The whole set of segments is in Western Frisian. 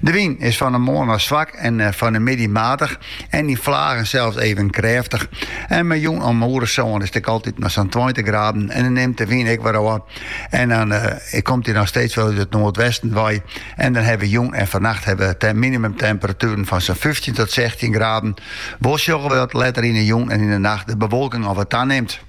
De wyn is fan 'e moarn ôf swak en fan 'e middei matich en yn flagen sels even krêftich. En mei jûn om oerersân is it altyd noch sa'n tweintich graden en dan nimt de wyn ek wer ôf. En dan komt dy noch steeds wol út it noardwesten wei en dan hawwe we jûn en fannacht hawwe we minimumtemperatueren fan sa'n fyftjin tot sechstjin graden. Wol sjogge we dat letter yn 'e jûn en yn 'e nacht de bewolking al wat tanimt.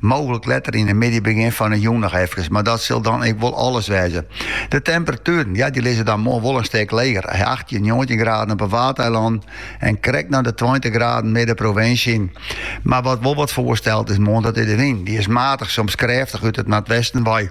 Mooglik letter yn 'e middei, begjin fan 'e jûn noch efkes, mar dat sil dan ek wol alles wêze. De temperatueren, ja, dy lizze dan moarn wol in stik leger, achttjin, njoggentjin graden op 'e Waadeilannen en krekt nei de tweintich graden midden provinsje. Mar wat wol wat foarstelt moarn, dat is de wyn. Dy is matich, soms krêftich út it noardwesten wei.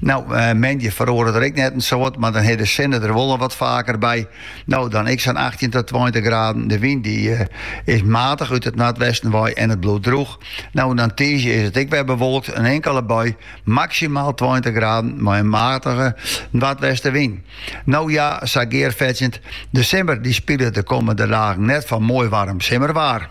No, moandei feroaret dêr ek net in soad, mar dan is de sinne der wol wat faker by. No, dan ek sa'n achttjin ta tweintich graden. De wyn dy is matich út it noardwesten wei en it bliuwt droech. No, dan tiisdei is it ek wer bewolkt, in inkele bui, maksimaal tweintich graden mei in matige noardwestenwyn. No ja, sa gearfetsjend, de simmer dy spilet de kommende dagen net foar moai waarm simmerwaar.